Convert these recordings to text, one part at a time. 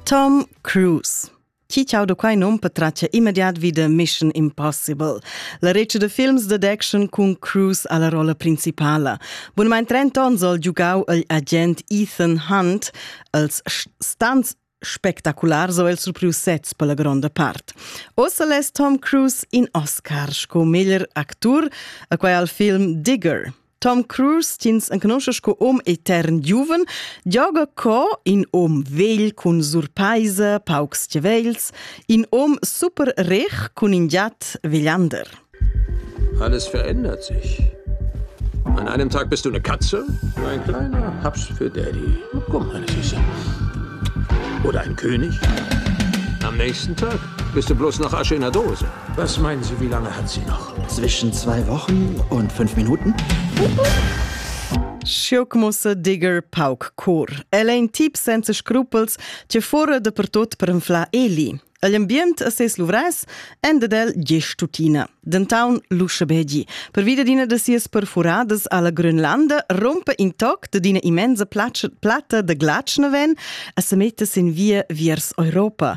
Tom Cruise Chi ciau da quai nom patratgia immediat vi da Mission Impossible, la regia da films dad action cun Cruise alla rolla principala. Bunamain 30 onns al giugau il agent Ethan Hunt als stunts spectaculars o el surprius sets per la gronda part. Ossa les Tom Cruise in Oscar sco meglier actur, a quai al film Digger. Tom Cruise t'ins enconosce sco hom etern giuven, gioga co in hom vegl cun surpaisa, paucs chiavels, in hom super rech cun in giat vegliander. Alles verändert sich. An einem Tag bist du eine Katze, du ein kleiner Haps für Daddy. Komm, meine Süße. Oder ein König. Am nächsten Tag Bist du bloß noch Asche in der Dose? Was meinen Sie, wie lange hat sie noch? Zwischen zwei Wochen und fünf Minuten. Schiocmusse digger pauc cur. El è in tip senza scrupels che fora de pertot per infla eli. L'ambient a ses luvres endedel gest tutina. Dentaun Luschebegi, per via d'ina de sias perfuradas alla Grönlanda, rompe intoc de d'ina immensa platta de glatschna ven a se metta sin via viers Europa,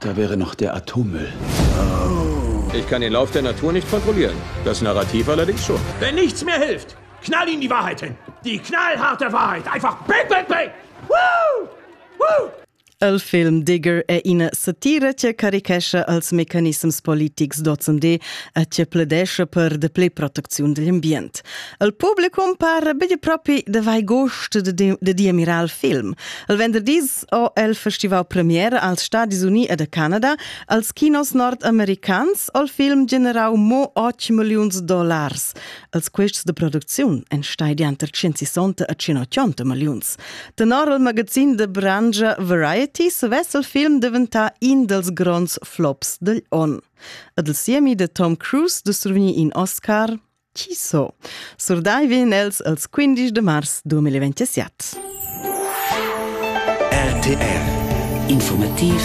Da wäre noch der Atommüll. Ich kann den Lauf der Natur nicht kontrollieren. Das Narrativ allerdings schon. Wenn nichts mehr hilft, knall ihn die Wahrheit hin. Die knallharte Wahrheit. Einfach bang, bang, bang. Woo! Woo! El film Digger è ina satira che carichescha als mecanissems politics d'ozendi e che pledescha per de play protecziun degl ambient. El publicum par begli propi de vai gost de, de, de diemirar il film. El venderdis Quest ò el festival premiere als Stadis Uni ed a Canada. Als kinos nordamericans ò il film generau mo 8 milliuns dollars. Els quests de producziun en stai dianter 160 a 180 milliuns. Tenor il magazin de Brangia Variety sovess il film diventar in dels gronds flops degl on. Ed il siemi de Tom Cruise de survigni in Oscar Chi so? Surdai vegn els als 15 de mars 2027. RTR Informativ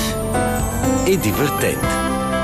e divertent